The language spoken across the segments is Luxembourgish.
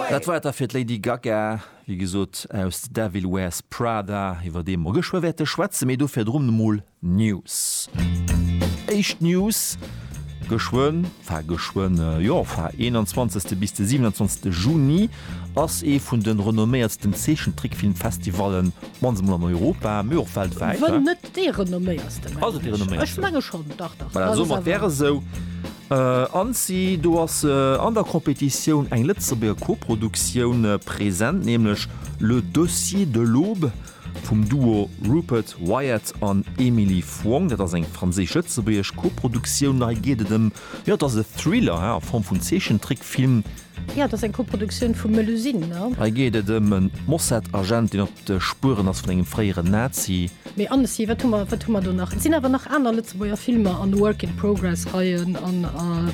Dat war et da fir d'Lady Gaga, wéi gesot aus The Devil Wears Prada, iwwer dee mer geschwë wäerte schwätzen, mee do virdrun emol News. Éischt News, geschwënn, enfin geschwënn, jo, enfin, 21. bis de 27. Juni ass ee vun de renomméiertsten Zeechentrickfilmfestivallen, mannst emol an Europa, mee och weltwäit, wa? Ass et dee renomméiersten? Ech menge schonn, dach, dach. Voilà, soen mer, et wär esou. Annecy, do ass an der Competitioun eng Lëtzebuerger Koproduktioun present, nämlech Le Dossier de l'Aube vum Duo Rupert Wyatt an Emily Fong. Dat ass eng franséisch-lëtzebuergesch Koproduktioun. Hei geet et ëm, jo, et ass e Thriller a Form vun Zeechentrickfilm, Jo, et ass eng Koproduktioun vu Melusine, ne? Hei geet et ëm e Mossad-Agent, deen op de Spueren ass vun engem fréieren Nazi. Mee Annecy, wat hu mer, wat hu mer do nach? Et sinn awer nach aner Lëtzebuerger Filmer an Work-in-Progress-Reien an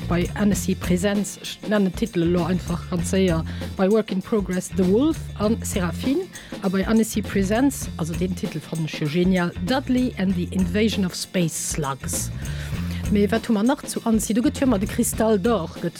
bei Annecy Presents, ech nennen d'Titele lo einfach ganz séier, bei Work-in-Progress The Wolf a Séraphine a bei Annecy Presents, also deen Titel fannen ech jo genial, Dudley and the Invasion of Space Slugs. Mee wat hu mer nach zu Annecy? Do gëtt jo ëmmer de Cristal d'Or, gëtt.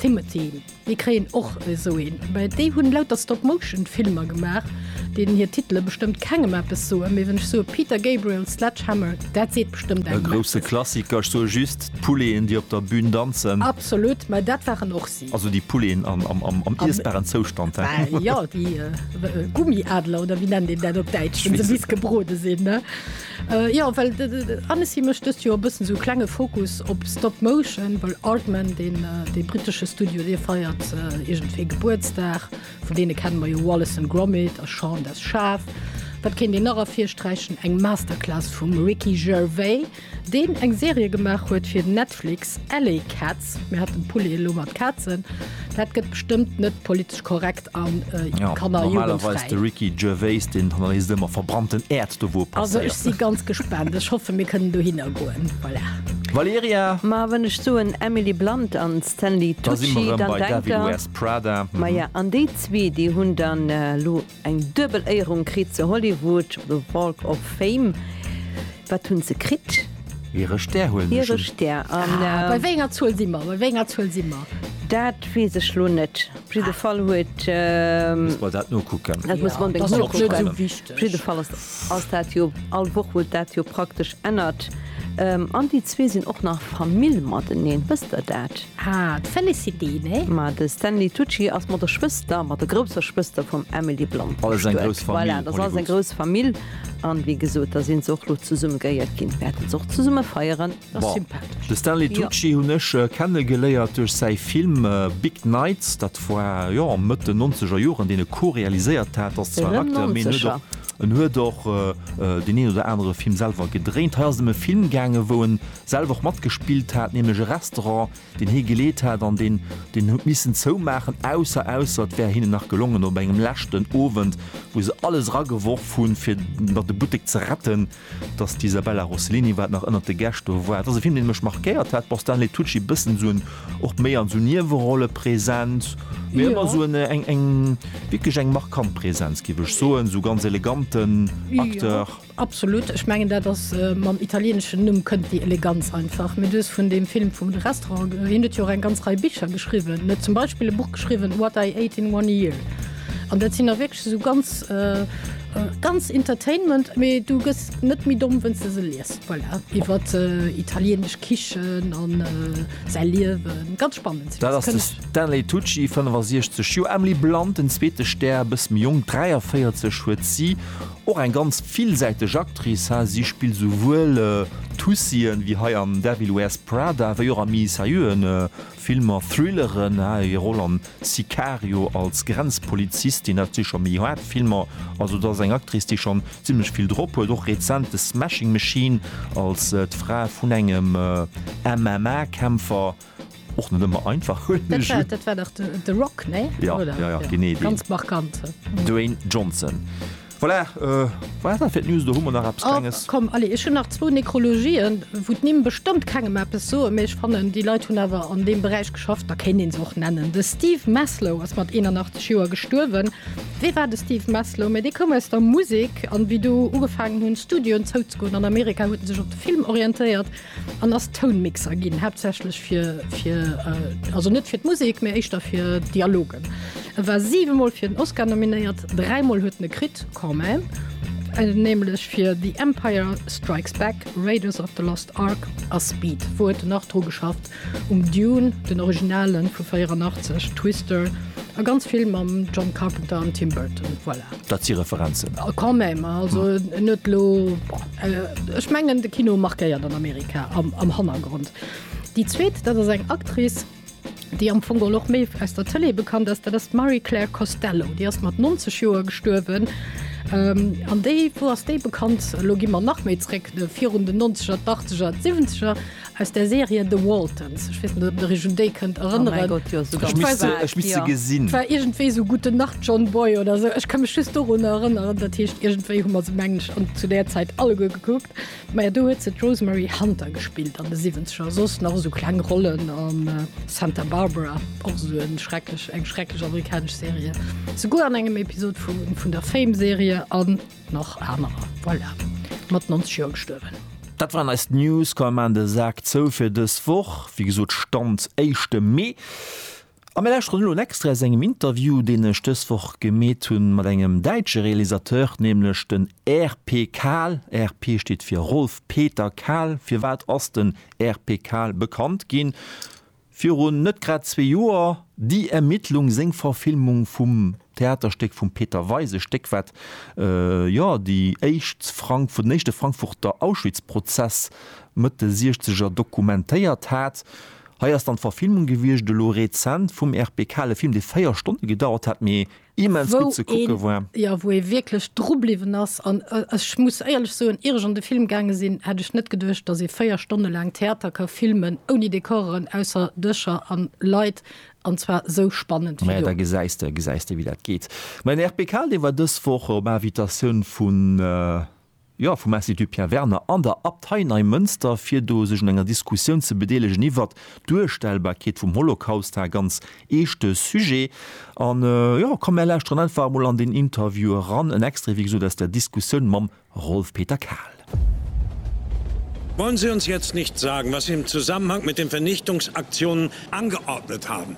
Timothy, mir kréien och esou een, mä déi hunn lauter Stop Motion Filmer gemaach, deenen hir Titele bestëmmt kengem eppes soen, mä wann ech soe Peter Gabriel Sledgehammer, dat seet bestëmmt engem eppes. E grousse Klassiker, ech soe just, d'Pouléen déi op der Bühn danzen. Absolut, mä dat waren och si. Also déi Pouléen am iessbaren Zoustand, he? Mä jo, déi Gummiadler oder wéi nennt een dat op Däitsch, wann se bis gebrode sinn, he? Jo, well Annecy mécht dëst Joer e bëssen esou e klenge Fokus op Stop Motion, well Aardman, deen dee brittesche Studio, dee feiert iergendwéi Gebuertsdag. Vun deene kenne mer jo Wallace and Gromit a Shaun das Schaf. Wat kéint een nach ervirsträichen? Eng Masterclass vum Ricky Gervais, deen eng Serie gemaach huet fir Netflix, Alley Cat. Mir hat den Pulli elo mat Kazen, dat gëtt bestëmmt net politesch korrekt an äh, ja, kann normalerweis de Ricky Gervais den Journalist ëmmer verbrannten Äerd do wo Also ech si ganz gespannt Ech hoffe mir kënnen do hinnergoen. Voilà. Valeria Ma wann ech soen Emily Blunt an Stanley Tucci, dann denkt der Prada. Maja an déi zwee déi hunn dann äh, lo. Eng duebel Éierung kritt se, Hollywood, The Walk of Fame. Wat hunn se kritt? Hire Stär huelen ech un. Hire Stär, an. Ah, bei wéi enger Zuel si mer? Bei wéi enger Zuel si mer? Dat weess ech lo net. Op jidde Fall huet. Muss mer dat nokucken. Dat muss mer onbedéngt nokucken. Dat ass jo och net esou wichteg. Op jidde Fall ass dat jo all Woch, wou dat jo praktesch ännert. An déi zwee sinn och nach Famill mateneen. Wësst Der dat? Ah, d'Félicité, nee? Ma de Stanley Tucci ass mat der Schwëster, mat der grousser Schwëster vum Emily Blunt bestuet. Voilà, dass alles eng grouss Famill. An wéi gesot, da sinn se och lo zesumme geéiert ginn, wäerten se och zesumme feieren. Ass sympathesch. De Stanley Tucci hunn ech kenne geléiert duerch säi Film Big Nights. Dat war, jo, Mëtt den nonzeger Joren, deen e co-realiséiert hat. Ass zwar en Acteur, mee en huet och, en huet och deen een oder anere Film selwer gedréint. Hei ass et ëm e Film gaangen, wou en. selwer och matgespillt hat, nämlech e Restaurant, deen hie geleet hat an deen deen huet missen zoumaachen, ausser ausser et wär hinnen nach gelongen op engem leschten Owend, wou se alles erageworf hunn, fir nach de Buttek ze retten, datt d'Isabella Rossellini, wat nach ënnert de Gäscht do war. Et ass e Film, dee mech markéiert hat, bon, Stanley Tucci bëssen esou en, och méi an esou Niewerolle present, mee ëmmer esou en, eng, eng, wierklech eng markant Presenz, géif ech soen, esou ganz eleganten Acteur. Absolut, ech mengen dat ass, mam italieneschen Numm kënnt déi Eleganz einfach. Mee du hues vun deem Film vum Restaurant ge-, hien huet jo och eng ganz Rei Bicher geschriwwen. En huet zum Beispill e Buch geschriwwen, What I Ate in One Year. An dat sinn da wierklech esou ganz, ganz Entertainment, mee du gëss net méi domm, wënns de se liest. Voilà, iwwer italienesch Kichen an säi Liewen. Ganz spannend. Dat ass de Stanley Tucci, 65 Joer, Emily Blunt, den zweete Stär, e bësse méi jonk, 43, huet si. Och eng ganz villsäiteg Actrice, ha, si spillt souwuel Tussien, wéi hei am Devil Wears Prada, wéi och a méi seriöen Filmer, Thrilleren, ha, hir Roll am Sicario als Grenzpolizistin, dat si scho méi haart Filmer, also dat ass eng Actrice, déi schonn zimlech vill drop huet, och rezent The Smashing Machine als d'Fra vun engem MMA-Kämpfer. Och net ëmmer einfach hunn ech un. Dat war dach The Rock, ne? Jo, jo, jo, genee deen. Ganz markant. Dwayne Johnson. Voilà, war dat fir d'News oder hu mer nach eppes Klenges? Oh, komm, allez, ech hunn nach zwou Nekrologien, wou d'Nimm bestëmmt kengem eppes soen, mee ech fannen, déi Leit hunn awer an deem Beräich geschafft, da kéint ee se och nennen. De Steve Maslow ass mat 81 Joer gestuerwen. Wie war de Steve Maslow? Mä dee koum aus der Musek, an wéi do ugefaangen hunn, Studioen zouzegoen an Amerika, huet en sech op de Film orientéiert. En ass Tounmixer ginn, haaptsächlech fir, fir, also net fir d'Musek, mä éischter fir Dialogen. E war siwe Mol fir den Oscar nominéiert, dräi Mol huet en e kritt, quand même, nämlech fir The Empire Strikes Back, Raiders of the Lost Ark a Speed. Wou huet en nach dru geschafft? Um Dune, den Originalen vu 84, Twister a ganz vill mam John Carpenter an Tim Burton. Voilà. Dat si Referenzen. Quand même, also en huet elo. Ech mengen de Kino markéiert an Amerika am Hannergrond. Déi zweet, dat ass eng Actrice, déi am Fong geholl och méi aus der Tëlee bekannt ass, dat ass d'Marie-Claire Costello. Déi ass mat 90 Joer gestuerwen. An déi, wou ass déi bekannt? Elo gi mer nach méi zréck, virun den Nonzeger, d'Achtzeger, d'Siwwenzeger. Aus der Serie The Waltons. Ech weess net, ob der iech un déi kënnt erënneren. Oh mäi Gott, jo, sou ganz. Ech misst se, ech misst se gesinn. War iergendwéi sou Gute Nacht, John Boy oder sou. Ech ka mech just dorun erënneren. Dat heescht, iergendwéi hu mer se, mengen ech, an zu där Zäit alleguer gekuckt. Maja, do huet se d'Rosemary Hunter gespillt an de Siwwenzeger. Soss nach esou kleng Rollen an Santa Barbara, och esou e schrecklech, eng schrecklech amerikanesch Serie, souguer an engem Episod vu vun der Fame-Serie. An. Nach anerer, voilà, mat 90 Joer gestuerwen. Dat waren eis News. Komm mir maachen de Sak zou fir dës Woch. Wéi gesot, Stand éischte Mee. A mir lauschteren elo en Extrait aus engem Interview, deen ech dës Woch gemeet hunn mat engem däitsche Realisateur, nämlech den RP Kahl. RP steet fir Rolf Peter Kahl. Firwat ass den RP Kahl bekannt ginn? Virun net grad zwee Joer Die Ermittlung, seng Verfilmung vum Theaterstéck vum Peter Weis, e Stéck wat jo déi éischt, den éischte Frankfurter Auschwitzprozess Mëtt de Siechzeger dokumentéiert hat. Hei ass dann d'Verfilmung gewiescht elo rezent vum RP Kale Film, dee véier Stonne gedauert hat, mee immens gutt ze kucke war. Wou een, jo, wou ee wierklech dru bliwwen ass. An ech muss éierlech soen, ier ech an de Film gaange sinn, hätt ech net geduecht, datt ee véier Stonne laang Theater ka filmen ouni Dekoren, ausser Dëscher an Leit, an zwar esou spannend wéi do. Mä da gesäis de, gesäis de wéi dat geet. Mäin RP Kaaldeewer dës Woch op Invitatioun vun. jo vum Institut Pierre Werner an der Abtei Neimënster, fir do sech un enger Diskussioun ze bedeelegen iwwert d'Duerstellbarkeet vum Holocaust, ha ganz eeschte Sujet. An jo, komm mär lauschteren einfach emol an deen Interview eran, en Extrait wéi gesot aus der Diskussioun mam Rolf Peter Kahl. Wollen Sie uns jetzt nicht sagen, was Sie im Zusammenhang mit den Vernichtungsaktionen angeordnet haben?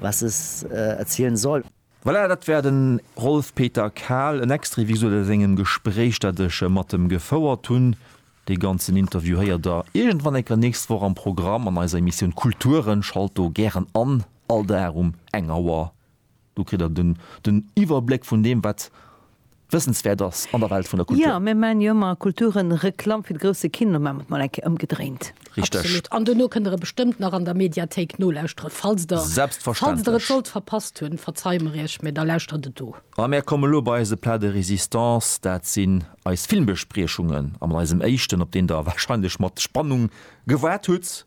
was es erzielen soll. Voilà, dat war den Rolf Peter Kahl, en Extrait wéi gesot aus engem Gespréich dat ech mat em gefouert hun. Dee ganzen Interview héiert der iergendwann enker nächst Woch am Programm an eiser Emissioun Kulturen. Schalt do gären an, all Dag um eng Auer, do kritt der den Iwwerbléck vun deem wat wëssenswäert ass an der Welt vun der Kultur. Jo, mir maachen jo ëmmer Kulturenreklamm fir de grousse Kino, maachen mer et mol eng Kéier ëmgedréint. Richteg. Absolut. An dono kënnt der e bestëmmt nach an der Mediathéik nolauschtere falls der falls der et sollt verpasst hunn. Verzeie mer iech, mä da lauschtert et do. A mär komme lo bei eise Plat de résistance, dat sinn eis Filmbespriechungen. A mat eisem éischten, op deen der wahrscheinlech mat Spannung gewaart hutt.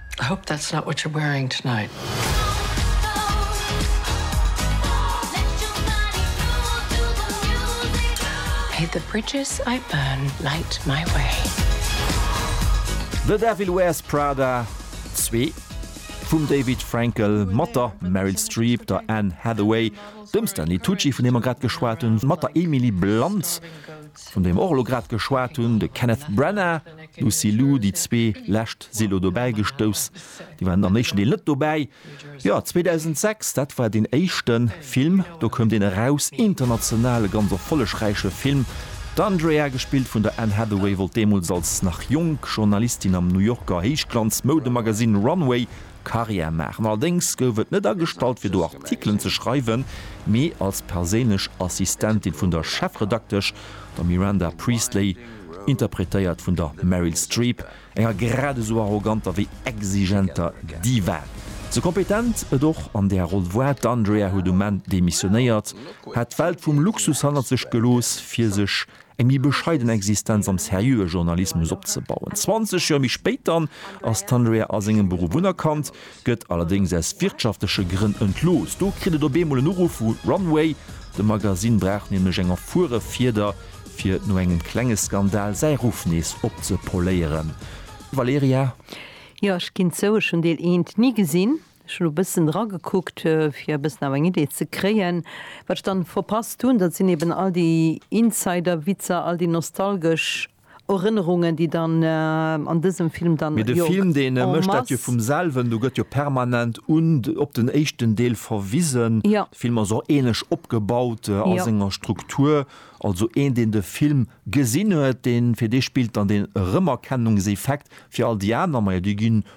I hope that's not what you're wearing tonight. May the bridges I burn light my way. The Devil Wears Prada 2 vum David Frankel mat der Meryl Streep, der Anne Hathaway, dem Stanley Tucci, vun deem mer grad geschwat hunn, mat der Emily Blunt, vun deem mer och elo grad geschwat hunn, de Kenneth Branagh, Lucy Liu, Déi zwee lescht si elo dobäi gestouss, déi waren am éischten Deel net dobäi. Jo, 2006, dat war deen éischte Film, do koum deen eraus, international e ganz erfollegräiche Film. D'Andrea, gespillt vun der Anne Hathaway, wollt deemools als nach jonk Journalistin am New Yorker Héichglanz-Moudemagazin Runway Karriär maachen. Allerdéngs gouf et net agestallt fir do Artikelen ze schreiwen, mee als perséinlech Assistentin vun der Chefredaktesch, der Miranda Priestley, interpretéiert vun der Meryl Streep, enger grad esou arroganter wéi exigenter Diva. Sou kompetent et och an där Roll woar, d'Andrea huet um Enn demissionéiert, hat d'Welt vum Luxus hannert sech gelooss, fir sech eng méi bescheiden Existenz am seriöe Journalismus opzebauen. Zwanzeg Joer méi spéit dann ass d'Andrea a sengem Beruff unerkannt, gëtt allerdéngs aus wirtschaftleche Grënn entlooss. Do kritt et op eemol en Uruff vu Runway, de Magasinn brauch nämlech eng erfuere Fieder, fir no engem klenge Skandal säi Ruff nees opzepoléieren. Valerija? Jo, ech ginn zou, ech hunn Deel eent ni gesinn. Ech hunn e bëssen era gekuckt, fir e bëssen awer eng Idee ze kréien. Wat ech dann verpasst hunn, dat sinn eben all déi Insider-Witzer, all déi nostalgesch Erënnerungen déi dann an dësem Film dann jo en masse. Mee de Film deen mécht dat jo vum selwen, do gëtt jo permanent un op den éischten Deel verwisen. De Film ass och ähnlech opgebaut a senger Struktur. Also een deen de Film gesinn huet, deen fir dee spillt dann den Erëmerkennungseffekt. Fir all déi aner, majo déi ginn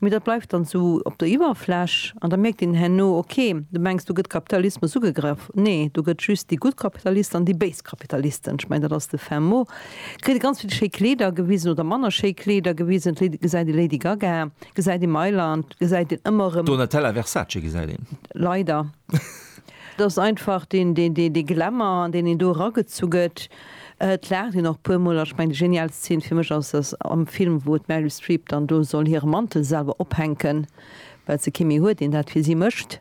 Mee dat bleift dann esou op der Iwwerfläch an da mierkt een herno, ok, du mengs do gëtt Kapitalismus ugegraff, nee, do gëtt just déi gutt Kapitalisten an déi béis Kapitalisten, ech mengen dat ass de fin mot, kritt ee ganz vill schéi Kleeder gewisen oder manner schéi Kleeder gewisen, d'Lady, gesäit ee Lady Gaga, gesäit ee Mailand, gesäit een ëmmer erëm. Donatella Versace gesäit een. Leider. Et ass einfach dee Glamour, an deen een do eragezu gëtt. Et laacht een och puer mol an ech mengen déi genialst Szene fir mech ass dass am Film wou d'Meryl Streep dann do soll hire Mantel selwer ophänken well se kee méi huet deen dat fir si mécht.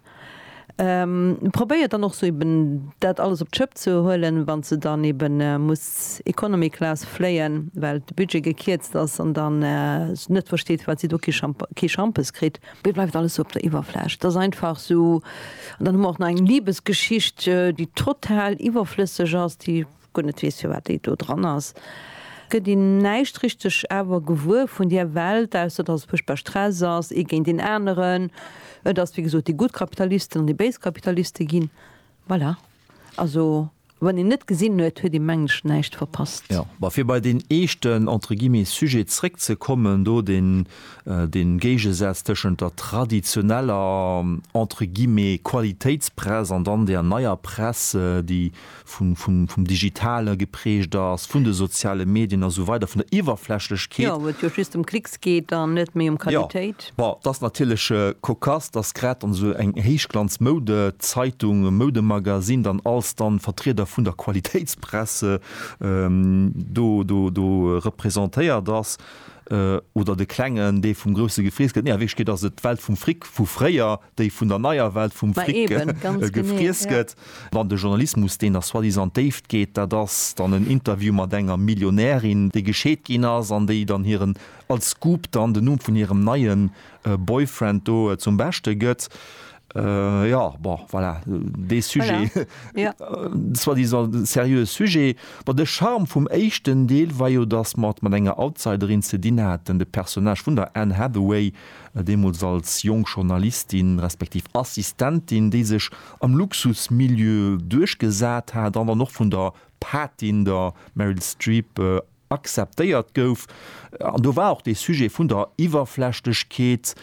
Et probéiert dann och sou eben dat alles op d'Schëpp ze huelen wann se dann eben muss Economy Class fléien well de Budget gekierzt ass an dann net versteet wat si do kee Schampes kritt. Et bleift alles sou op der Iwwerfläch. Et ass einfach sou, an dann hu mer och nach eng Libesgeschicht, déi total iwwerflësseg ass, déi ech guer net weess, firwat déi do dran ass. Et gëtt een näischt richteg awer gewuer vun där Welt, ausser dass et fuerchtbar Stress ass, ee géint deen aneren. Et ass, wéi gesot, déi gutt Kapitalisten an déi béis Kapitaliste ginn. Voilà. Also. Wann een net gesinn huet, huet ee mengen ech näischt verpasst. Jo, ma fir bei deen eeschten, entre guillemets, Sujet zréck ze kommen, do deen, deen Géigesaz tëschent der traditioneller, entre guillemets, Qualitéitspress an dann där neier Press, déi vun, vun, vum Digitale geprägt ass, vun de soziale Medien a sou weider, vun der Iwwerflächlechkeet. Jo, wou et jo just ëm Klicks geet an net méi ëm Qualitéit. Bon, et ass natierlech cocasse, datt grad dann esou eng Héichglanz-Moudezeitung, Moudemagazin dann als dann Vertrieder vun der Qualitéitspresse do, do, do representéiert ass, oder de Klengen, dee vum Grousse gefriess gëtt. Nee, a Wierklechkeet ass et d'Welt vum Fric vu fréier, déi vun der neier Welt vum Ma Fric eben, ganz genee, gefriess ja. gëtt. Dann de Journalismus, deen da soi-disant an d'Déift geet, dat ass dann en Interview mat enger Millionärin, déi gescheet ginn ass an déi dann hiren als Scoop dann den Numm vun hirem neien Boyfriend do zum Beschte gëtt. Jo, bon, voilà, dee Sujet, soi-disant seriöe Sujet. Bon, de Charme vum éischten Deel war jo, dass mer et mat enger Outsiderin ze dinn haten, de Personnage vun der Anne Hathaway, deemools als jonk Journalistin respektiv Assistentin, déi sech am Luxusmilieu duerchgesat hat, an dann och vun der Patin, der Meryl Streep, akzeptéiert gouf, an do war och dee Sujet vun der Iwwerflächlechkeet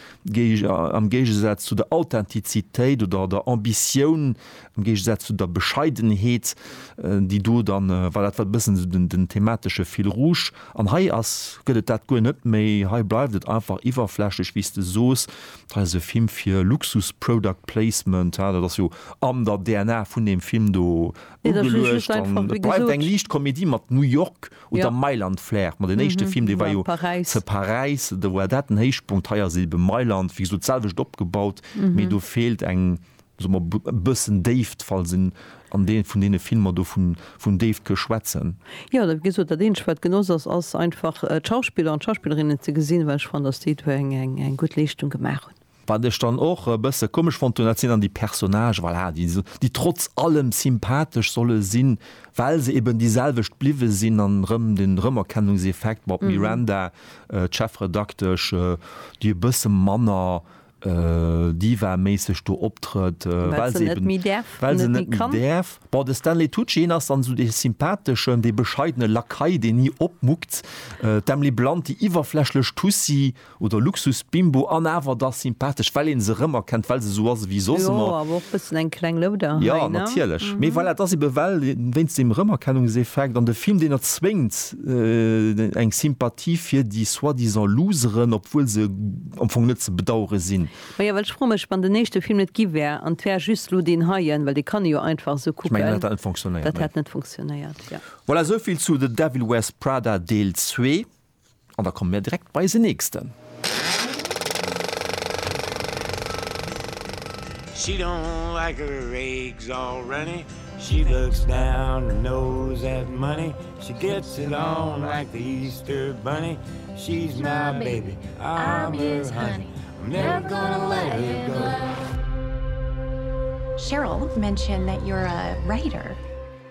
am Géigesaz zu der Authentizitéit oder der Ambitioun, am Géigesaz zu der Bescheidenheet, déi do da war. Dat war e bëssen esou den thematesche Fil rouge. An hei ass, gëtt et dat guer net méi. Hei bleift et einfach iwwerflächlech, wéi s de soos. Hei ass e Film fir Luxus-Product-Placement. Dat ass jo an der DNA vun deem Film do ugeluecht an et bleift eng liicht Komedie mat New York oder Mailand-Flair. Ma den éischte Film, dee war jo ze Paräis, do war dat den Héichpunkt. Hei ass et ebe Mailand, wéi gesot, d'selwecht opgebaut, mee do feelt eng, soe mer, e bëssen Déift, falls een an dee vun deene Filmer do vun Déift ke schwätzen. Jo, wéi gesot, dat eenzegt, wat genoss ass, ass einfach d'Schauspiller an d'Schauspillerinnen ze gesinn, well ech fannen, dass déi do eng gutt Leeschtung gemaach hunn. Wat ech dann och e bësse komesch fonnt hunn, dat sinn dann déi Personnage, voilà, déi esou, déi trotz allem sympathesch solle sinn, well se eben déi selwecht bliwwe sinn an erëm den Rëmerkennungseffekt, bon, d'Miranda, d'Chefredaktesch, déi e bësse manner Diva-méisseg do optrëtt, well se eben, well se net méi däerf, bon, de Stanley Tucci, hien ass dann esou dee sympatheschen, dee bescheidene Lakai, deen ni opmuckt, d'Emily Blunt, déi iwwerflächlech Tussi. Oder Luxusbimbo an awer da sympathesch, well een se rëmerkennt, well se esou ass ewéi soss Jo, ëmmer. awer och bëssen eng kleng Louder hei, Ja, ne? natierlech. Mee voilà, et ass ebe well wéinst deem Rëmerkennungseffekt an de Film, deen erzwéngt eng Sympathie fir déi soi-disant Loseren, obwuel se am Fong net ze bedauere sinn. Maja, well ech froe mech, wann den éischte Film net gi wär an et wär just elo deen heien, well dee kann ee jo einfach esou Ech mengen, kucken, dat hätt net funktionéiert, dat nee. hätt net funktionéiert, jo. Voilà, esou vill zu The Devil Wears Prada Deel zwee. An da komme mir direkt bei eisen nächsten. She don't like her eggs all runny She looks down her nose at money She gets along like the Easter bunny She's my baby I'm her honey I'm never gonna let her go Cheryl mentioned that you're a writer.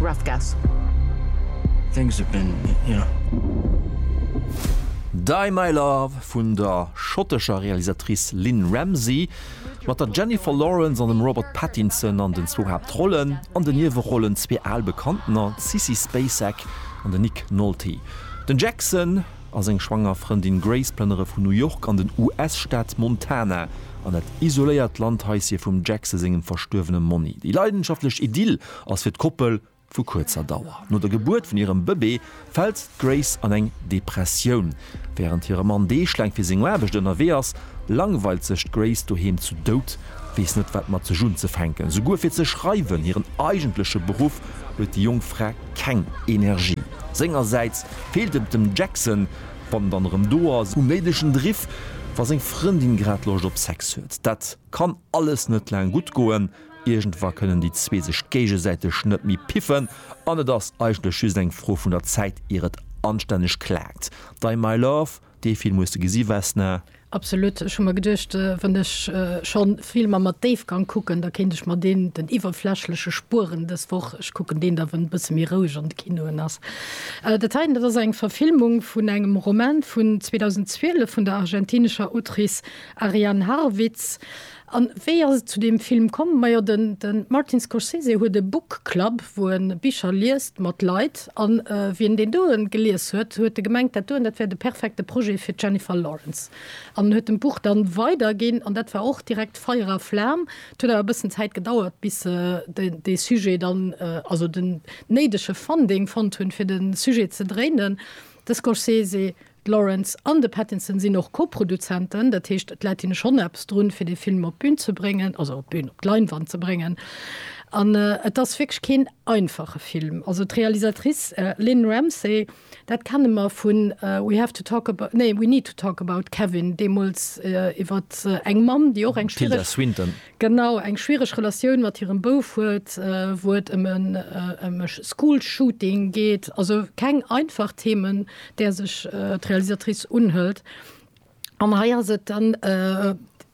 Rough guess. Think it's a been, yeah. Die My Love vun der schottescher Realisatrice Lynne Ramsay, mat der Jennifer Lawrence an dem Robert Pattinson an den zwou Haaptrollen, an den Niewerollen zwee al Bekanntener, d'Sissy Spacek an den Nick Nolte. Den Jackson. a seng schwanger Frëndin Grace plënnere vun New York an den US-Staat Montana an dat isoléiert Landhaissie vum Jackse sengem verstuerwene Monni. Déi leidenschaftlech Idyll ass fir d'Koppel vu kuerzer Dauer. No der Gebuert vun hirem Bëbee fält d'Grace an eng Depressioun. Wärend hire Mann deeglaang fir seng Aarbecht ënnerwee ass, langweilt sech d'Grace doheem zu Dout, weess net, wat mat sech unzefänken. Souguer fir ze schreiwen, hiren eigentleche Beruff, huet déi jonk Fra Keng Energie. Sengersäits feelt et dem Jackson, wann en dann erëm do ass, um néidegen Driff, wa seng Frëndin grad Loscht op Sex huet. Dat kann alles net laang gutt goen. Iergendwa kënnen déi zwee sech géigesäiteg net méi piffen an et ass eigentlech just eng Fro vun der Zäit, ier et anstänneg klaakt. Dai My Love Dee Film hues de gesi, Vesna? Absolut, ech hu mer geduecht, wann ech schonn Filmer mat Déifgang kucken, da kéint ech mer deen, den iwwerflächleche, spueren dës Woch. Ech kucken deen da, wann e bësse méi roueg an de Kinoen ass. Dat heiten, dat ass eng Verfilmung vun engem Roman vun 2012 vun der argentinescher Autrice Ariane Harwitz. An wéi ass et zu deem Film komm? Majo den Martin Scorsese huet e Book Club wou en Bicher liest mat Leit an wien deen doen gelies huet, huet e gemengt dat doen dat wär de perfekte Projet fir d'Jennifer Lawrence an en huet dem Buch dann weider ginn an dat war och direkt Feier a Flam. Et huet awer e bëssen Zäit gedauert bis se dee Sujet dann also den néidege Funding fonnt hunn fir den Sujet ze dréinen. De Scorsese D'Lawrence an de Pattinson sinn och Co-Produzenten, dat heescht d'Latine schonn eppes drun, fir dee Film op d'Bün ze bréngen, also op d'Bün, op d'Leinwand ze bréngen. An et ass wierklech keen einfache Film. Also d'Realisatrice Lynne Ramsay, dat kenne mer vu We have to talk about, nee, We need to talk about Kevin, deemools iwwert eng Mamm, déi och eng schwiereg. Tilda Swinton. Genau, eng schwiereg Relatioun mat hirem Bouf huet, wou et ëm e Schoolshooting geet. Also keng einfach Themen, där sech d'Realisatrice unhëlt. An hei ass et dann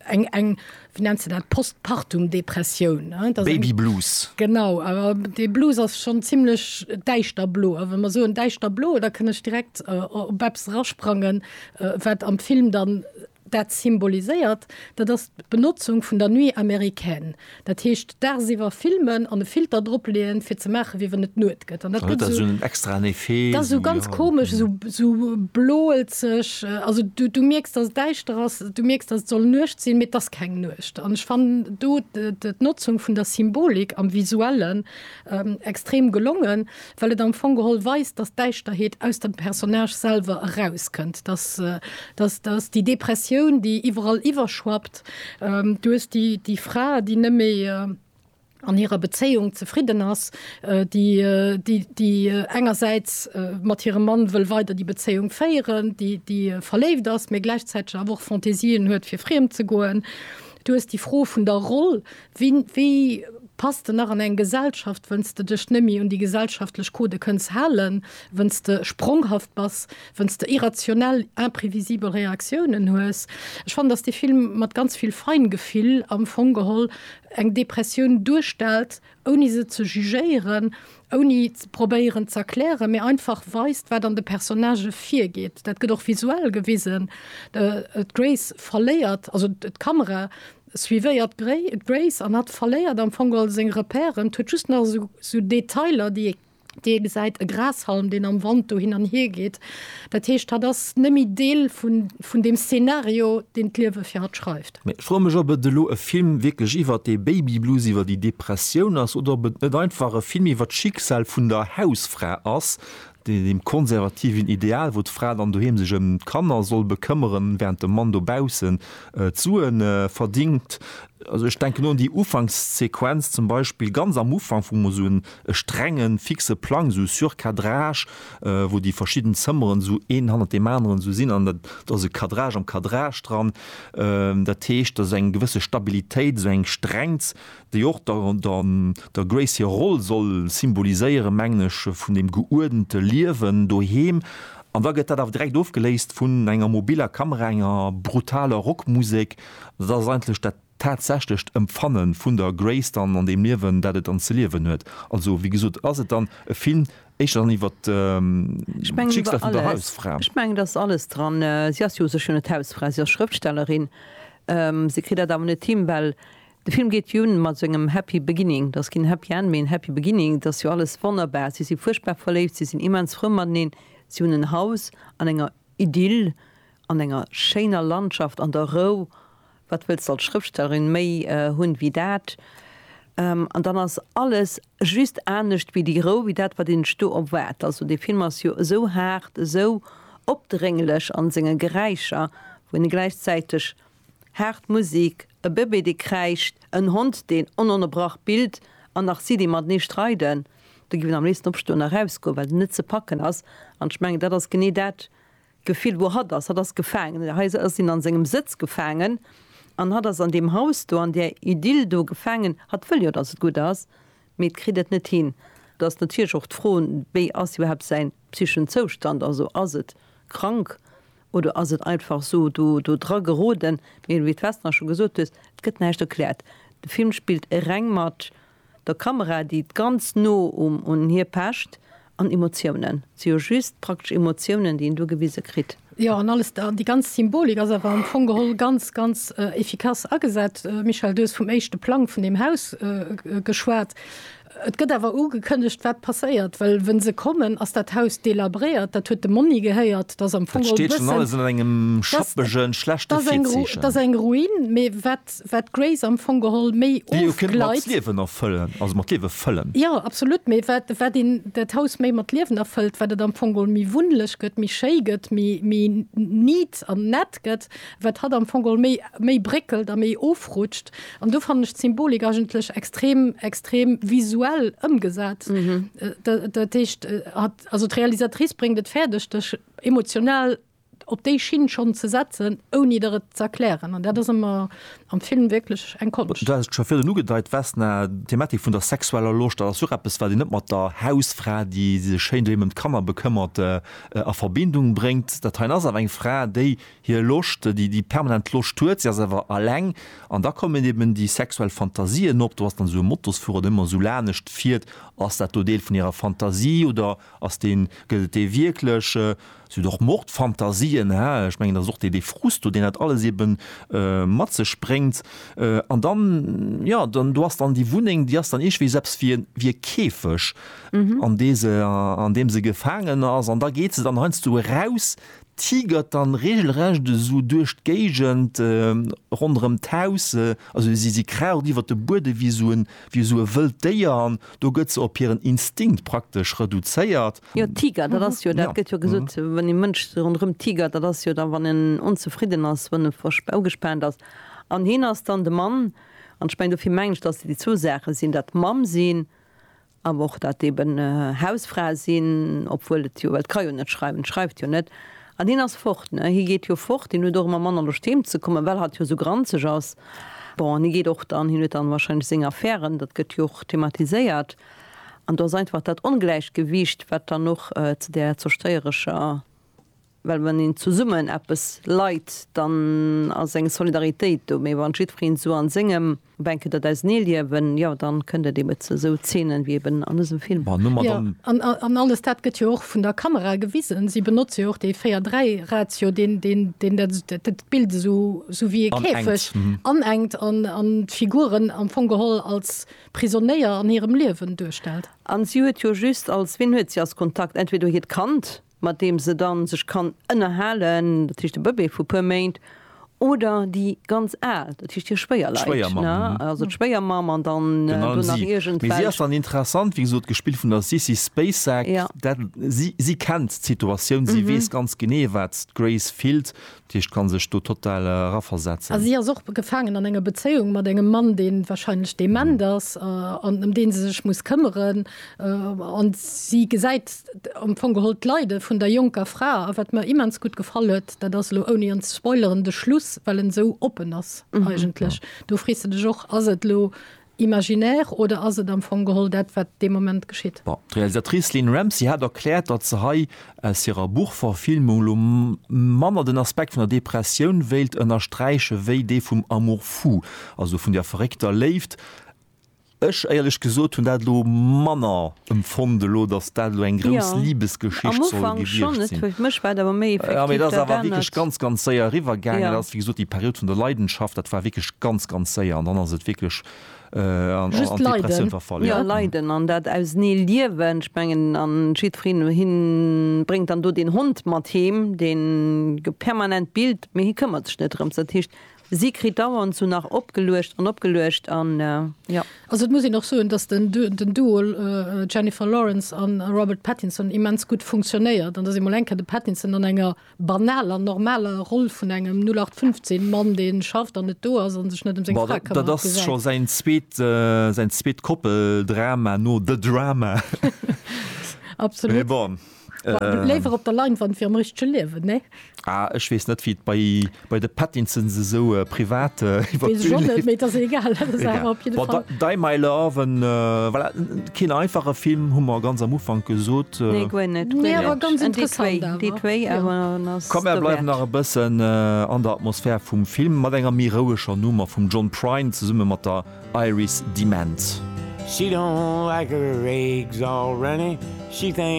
eng, wéi nennt se dat, Postpartum-Depressioun. Baby Blues. Genau, dee Blues ass schonn zimlech däischter blo. A wa mer soen däischter blo, da kënn ech direkt op eppes erasprangen, wat am Film dann, Dat symboliséiert, dat ass d'Benotzung vun der Nuit américaine. Dat heescht, dagsiwwer filmen an e Filter drop leeën, fir ze maachen, wéi wann et Nuet gëtt. An dat gëtt esou. An et huet da sou en extraen Effet. Dat ass esou ganz komesch, esou, esou bloelzeg. Also du, du mierks, dass et däischter ass, du mierks, dass et soll Nuecht sinn, mee et ass keng Nuecht. An ech fannen do d'Notzung vun der Symbolik am Visuellen extrem gelongen. well et am Fong geholl weist, dass d'Däischterheet aus dem Personnage selwer erauskënnt, dass dass dass déi Depressioun, déi iwwerall iwwerschwappt, du hues déi déi Fra, déi net méi an hirer Bezéiung zefridden ass, déi déi déi engersäits mat hirem Mann wëll weider déi Bezéiung féieren, déi déi verléift ass, mä gläichzäiteg awer och Fantaisien huet fir friem ze goen. Du hues déi Fro vun der Roll, Wéi pass de nach an eng Gesellschaft, wënns de dech némmi un déi gesellschaftlech Codë kënns halen, wënns de spronghaft bass, wënns de irrationell, imprevisibel Reaktiounen hues? Ech fannen, dass dee Film mat ganz vill Feingefill am Fong geholl eng Depressioun duerstellt, ouni se ze jugéieren, ouni ze probéieren z'erklären, mee einfach weist, wat an de Personnagë virgeet. Dat gëtt och visuell gewisen. D'Grace verléiert, also d'Kamera Et suivéiert d'Grace an hat verléiert am Fong all seng Repèren. Huet just nach esou esou Detailer, déi ee gesäit, e Grashalm, deen am Wand do hin an hier geet. Dat heescht, hatt ass nëmme Deel vun vun deem Szenario, deen d'Liewe fir hatt schreift. Mee ech froe mech, ob et elo e Film wierklech iwwert dee Baby Blues, iwwert déi Depressioun ass, oder ob et net einfach e Film iwwert d'Schicksal vun der Hausfra ass, deem konservativen Ideal, wou d'Fra dann doheem sech ëm d'Kanner soll bekëmmeren, während de Mann dobaussen d'Sue verdingt. Also ech denken un déi Ufankssequenz zum Beispill, ganz am Ufank, wou mer esou e strenge fixe Plang, esou Surcadrage, wou déi verschidden Zëmmeren esou een hannert deem aneren esou sinn, an et ass e Cadrage am Cadrage dran. Dat heescht, et ass eng gewësse Stabilitéit, esou eng Strengt, déi och der der Grace hir Roll soll symboliséieren, mengen ech, vun deem geuerdente Liewen doheem, an da gëtt dat awer direkt ofgeléist vun enger mobiller Kamera, enger brutaler Rockmusek. Dat ass eigentlech dat tatsächlecht Empfanne vun der Grace dann an deem Liewen, dat et dann ze liewen huet. Also, wéi gesot, ass et dann e Film éischter dann iwwert d'Schicksal vun der Hausfra. Ech mengen, et ass alles dran. Si ass jo u sech jo net d'Hausfra, si ass Schrëftstellerin. Si kritt dat awer net hin, well De Film geet jo un mat engem Happy Beginning. Dat ass keen Happy End, mee en Happy Beginning. Et ass jo alles wonnerbar. Si si fuerchtbar verléift, si sinn immens frou mateneen, si hunn en Haus an enger Idyll, an enger schéiner Landschaft, an der Rou. Wat wëlls de als Schrëftstellerin méi hunn wéi dat? An dann ass alles just anescht wéi déi Rou, wéi dat, wat een sech do erwaart. Also dee Film ass jo esou haart, esou opdrénglech a senge Geräischer, wou een e gläichzäiteg Haart Musik, e Bëbee dee kräischt, en Hond deen ononnerbrach billt an nach si déi matenee streiden, do giff een am léifsten opstoen a rausgoen, well et net ze packen ass. An ech mengen dat ass genee dat Gefill wou hatt ass. Hatt ass gefaangen. Hei ass hien an sengem Sëtz gefaangen an hatt ass an deem Haus do, an där Idyll do gefaangen. Hatt wëll jo dass et gutt ass, mee et kritt et net hin. Do ass natierlech och d'Fro wéi ass iwwerhaapt säin psychen Zoustand, also ass et krank Oder ass et einfach sou do dra geroden? Mee wéi d'Vesna scho gesot hues, et gëtt näischt erkläert. De Film spillt reng mat der Kamera, déi ganz no un hie pecht, an Emotiounen. Et si jo just praktesch Emotiounen, déi een do gewise kritt. Jo, an alles, déi ganz Symbolik ass awer am Fong geholl ganz, ganz efficace agesat. Michèle, du hues vum éischte Plang vun deem Haus geschwat. Et gëtt awer ugekënnegt, wat passéiert, well wë se kommen, ass dat Haus delabréiert. Dat huet dem Monni gehéiert. Dat ass am Fong och e bëssen. Dat steet schonn alles an engem schappege, schlechte Virzeechen. Dat ass eng Ruin. Mee wat, wat d'Grace am Fong geholl méi ofgleit. Déi jo kënnt mat Liewen erfëllen, also mat Liewe fëllen. Jo, absolut. Mee wat, wat een dat Haus méi mat Liewen erfëllt, wat et am Fong geholl méi wunnlech gëtt, méi schéi gëtt, méi, méi neat an nett gëtt, wat hatt am Fong geholl méi, méi bréckelt a méi ofrutscht. An do fannen ech d'Symbolik eigentlech extrem, extrem visuell ëmgesat. Dat heescht, also d'Realisatrice bréngt et fäerdeg, dech emotional op déi Schinn schonn ze setzen, ouni der et z'erklären. An dat ass ëmmer am Film wierklech eng Konscht. Du hatt et scho virun ugedeit, Vesna, d'Thematik vun der sexueller Loscht, dat ass jo och eppes, wat een net mat der Hausfra, déi sech schéin doheem ëm d'Kanner bekëmmert, a Verbindung bréngt. Dat heien ass awer eng Fra, déi hir Loscht, déi déi permanent Loscht huet, si ass awer aleng an da kommen eben déi sexuell Fantasien op, do ass dann esou e Motosfuerer, den ëmmer esou lanescht fiert, ass dat do Deel vun hirer Fantasie oder ass deen, gëtt et dee wierklech? Si huet och Mordfantasien, hä, ech mengen dat ass och dee dee Frust do, deen dat alles eben mat sech bréngt an dann, jo, dann do ass dann déi Wunneng, déi ass dann iergendwéi esou eppes wéi e wéi e Käfeg an dee se, an deem se gefaangen ass an da geet se dann heiansdo eraus, tigert dann regelrecht esou duerch d'Géigend ronderëm d'Haus, also si si kraucht iwwert de Bueden ewéi esou en, ewéi esou e wëllt Déier an do gëtt se op hiren Instinkt praktesch reduzéiert. Jo, tigert, dat ass jo, dat gëtt jo gesot, wann ee Mënsch esou ronderëm tigert, dat ass jo da wann en onzefridden ass, wann e verspaa, ugespaant ass an hien ass dann de Mann an ech mengen, dofir mengen ech, datt se déi zwou Saache sinn, dat Mamm sinn Awer och dat eben Hausfra sinn, obwuel et jo, well d'ka jo net schreiwen, d'schreift jo net. An hien ass fort, ne, hie geet jo fort, hien huet och ëmmer manner Loscht heem ze kommen, well hatt jo esou granzeg ass. Bon, an hie geet och dann, hien huet dann wahrscheinlech seng Affären, dat gëtt jo och thematiséiert. An do ass einfach dat Ongläichgewiicht, wat dann och zu där zerstéierescher Well wann een zesummen eppes leit, dann ass eng Solidaritéit do. Mee wann jiddwereen esou an sengem Bänke dat ausenee liewen, jo dann kënnt et eben ze esou Zeenen wéi eben an dësem Film. Jo, an alles dat gëtt jo och vun der Kamera gewisen. Si benotze jo och dee 4, 3 Ratio, deen deen dat Bild esou wéi ee Käfeg anenkt an d'Figuren am Fong geholl als Prisonéier an hirem Liewen duerstellt. An si huet jo just als, wien huet si als Kontakt? Entweder hiert Kand, mat deem se dann sech kann ënnerhalen, dat heescht de Bëbee vu puer Méint, oder déi ganz Al, dat heescht hir Schwéierleit, Schwéiermamm, ne, mhm, also d'Schwéiermamm an dann Virun allem do nach si, mee si iergendwelch. ass dann interessant, wéi gesot, gespillt vun der Sissy Spacek, Ja. dat, si, si kennt d'Situatioun, si weess ganz genee, wat d'Grace fillt, D'Heescht kann sech do total eraversetzen. Si ass och gefaangen an enger Bezéiung mat engem Mann, dee wahrscheinlech dement ass an ëm dee se sech muss këmmeren. An si gesäit am Fong geholl d'Leide vun der jonker Fra. A wat mer immens gutt gefall huet, dat ass elo, ouni en ze spoileren, de Schluss, well en esou oppen ass eigentlech. Do frees de dech och, Ass et elo imaginär oder ass et am Fong geholl dat, wat dee Moment geschitt? Bon, d'Realisatrice Lynne Ramsay hat erkläert, datt se hei aus hirer Buchverfilmung elo manner den Aspekt vun der Depressioun wéilt ënnersträiche wéi dee vum Amour fou, also vun der verréckter Léift. Ech, éierlech gesot, hunn dat elo manner Emfond elo dass dat elo eng grouss Liebesgeschicht soll gewiecht sin. Jo mee dass awer wierklech ganz ganz séier eriwwer gaangen ass, wéi gesot déi Period vun der Leidenschaft dat war wierklech ganz ganz séier an dann ass et wierklech an d'Depressioun verfall. Jo leiden an dat ausernee liewen, ech mengen an jiddfereen un hien bréngt dann do deen Hond mat heem deen permanent billt mee hie këmmert sech net drëms dat heescht Si kritt dauernd sou nach opgeluecht an opgeluecht an jo. Also et muss een och soen, dass den Duo Jennifer Lawrence a Robert Pattinson immens gutt funktionéiert an dass ee mol eng Kéier de Pattinson an enger banaler, normaler Roll vun engem 0815 Mann, dee schafft an net do ass a sech net ëm seng Fra këmmert, gesäit. Dat ass scho säin zweet, säin zweet Koppeldrama no The Drama. Absolut. Mee bon. Léiwer op der Leinwand wéi am richtege Liewen, nee? Ah, ech weess net, wéi et bei, bei de Pattinsons esou privat iwwer d'Bün léift. Weess ech och net, mee et ass egal, dat ass awer op jidde Fall. Bon, Die My Love, en, voilà, keen einfache Film, hu mer ganz am Ufank gesot. Nee, guer net, guer net. Mee awer ganz interessant awer. Déi zwéi awer ass derwäert. Komm, mer bleiwen nach e bëssen an der Atmosphär vum Film, mat enger méi roueger Nummer vum John Prine zesumme mat der Iris DeMent. She don't like her eggs already, she thinks.